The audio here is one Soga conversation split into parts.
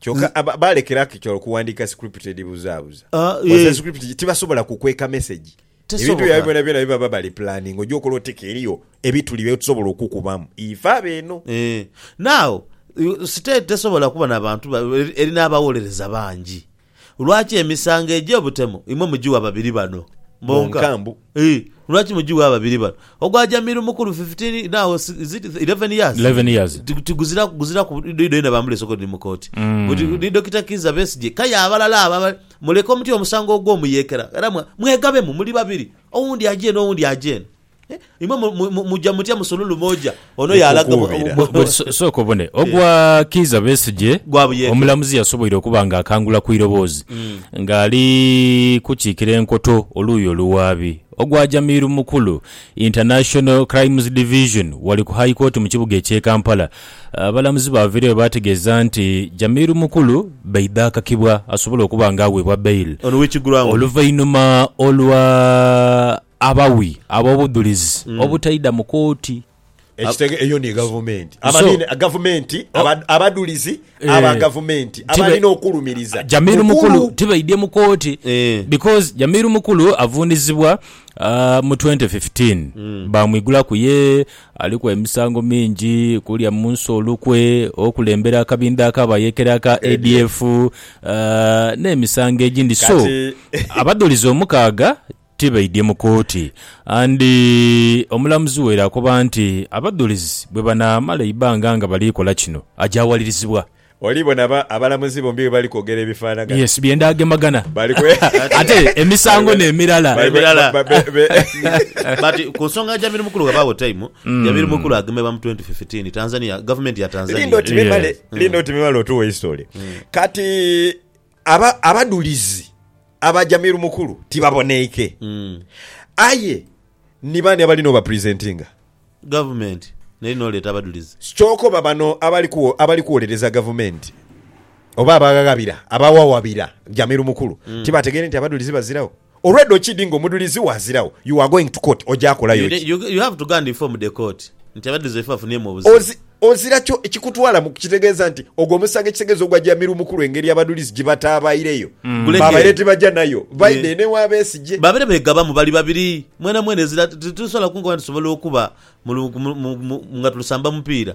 kyoka aba- balekera kitwala okuwandiika script edhibuzaabuza Ah, Kozesa eh. script tibasobola kukweka message Tesoboka. ebintu byabwe byona byona bibaba bali planning oja okola oteka eriyo ebituli byetusobola okukubamu ife abo eno Eh, now you- state tesobola kuba na bantu ba- eri- eri n'abawolereza bangi Lwaki emisango egy'obutemu imwe mugiwa babiri bano bonka? Ii, Lwaki mugiwa babiri bano? Ogwa Jamiru mukulu fifteen now is it eleven years? Eleven years. Ti- Tiguziraku guziraku idho yena bamulese okwo ni mu kooti. Buti ni Dokita Kiiza Besigye kaya abalala abo abali muleke omutye omusango ogw'omuyekera era mwa- mwegabemu muli babiri owundi aje eno owundi aje eno. Imwe muja mutya musululu moja ono yaalaga bwe. Sooka obone ogwa Kiiza Besigye, omulamuzi yasoboire okuba nga akangula ku iroboozi nga ali kukiikira enkoto oluuyi oluwaabi. Ogwa Jamir Mukulu, International Crimes Division, wali ku High Court mu kibuga ekye Kampala, abalamuzi baavaireyo baategeeza nti Jamir Mukulu baidha akakibwa asobole okuba nga aweebwa bail oluvainhuma olwa Abawi ab'obudhulizi obutaidha mu kooti. Ekitege, Eyo ni gavumenti. Abanini gavumenti, abadhulizi aba gavumenti abalina okulumiriza Jamiru Mukulu tibaidhye mu kooti because Jamiru Mukulu avunizibwa mu twenty fifteen baamwigulaku ye aliku emisango mingi kulya mu nsi olukwe, okulembera akabindha ak'abayekera aka ADF n'emisango egindi so abadhulizi omukaaga Tibaidhye mu kooti and omulamuzi waire akoba nti abadhulizi bwebanaamala eibbanga nga bali kola kino, aja walirizibwa. Oli bona ba abalamuzi bombi bwe bali kwogera ebifanagana. Yes byenda gemagana ate emisango ne mirala. But ku nsonga ya Jamil Mukulu ghabagho time Jamil Mukulu agemebwa mu twenty fifteen Tanzania, government ya Tanzania. Linda oti memale linda oti memale otuwe history kati. Aba, abadhulizi aba Jamil Mukulu tibaboneike. Mm. Aye ni baani abali n'obapresentinga? Gavumenti n'eri n'oleeta abadhulizi. Kyokoba bano abali kuwo, abali kuwolereza gavumenti oba abaghabira, abawawabira Jamil Mukulu tibategeire nti abadhulizi baziragho? Already okidi nga omudulizi wazirawo you are going to court oja kolayo ki? You you have to go and inform the court nti abadiluzi baife bafunhyemu obuzibu. Ozi, ozira kyo ekikutwala mu kitegeeza nti ogwo omusango ekitegeeza ogwa Jamil Mukulu engeri abadulizi gyebatabaireyo Guleke. babaire tibaja nayo baidha eno ewa Besigye. Babeere begabamu bali babiri mwena mwena ezira ti- ti- titusobola kunkoba nti tusobola okuba mu lu- mu- mu- mu- nga tulusamba mupiira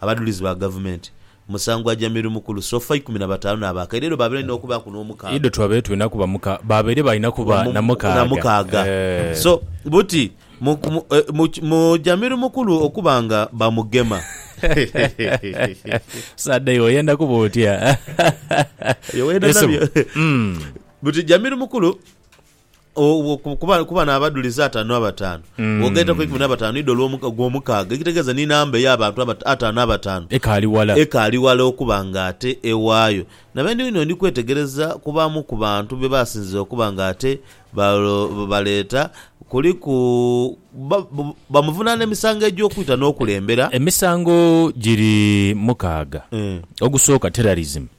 Abadhulizi ba Gavumenti, Musangwa Jamiru Mukulu, Sofa ikumi na bataanu n'abakaire eidho baabaire balina okubaaku n'omukaaga. Eidho twabaire tulina kuba muka, baabaire balina kuba na mukaaga. Eeh. So, buti, mu, mu, mu, mu Jamiru Mukulu okuba nga bamugema. Sadei, oyenda kuba otya? By'oyenda Yesu. nabyo. Mm. Buti Jamiru Mukulu. Obwo ku- kuba kuba n'abadulizi ataanu abataanu. Mm. Bw'ogaitaku eikumi n'abataanu idho olw'omu- ogw'omukaaga, ekitegeeza ni namba ey'abantu abata- ataanu abataanu, Ekaali wala. ekaali wala okuba ng'ate ewaayo. Na bene inho ndi kwetegereza ku baamu ku bantu be baasinzira okuba ng'ate balo- baleeta, kuliku ba- ba- bamuvunaana emisango egy'okwita n'okulembera. Emisango giri mukaaga. Eh. Ogusooka, terrorism.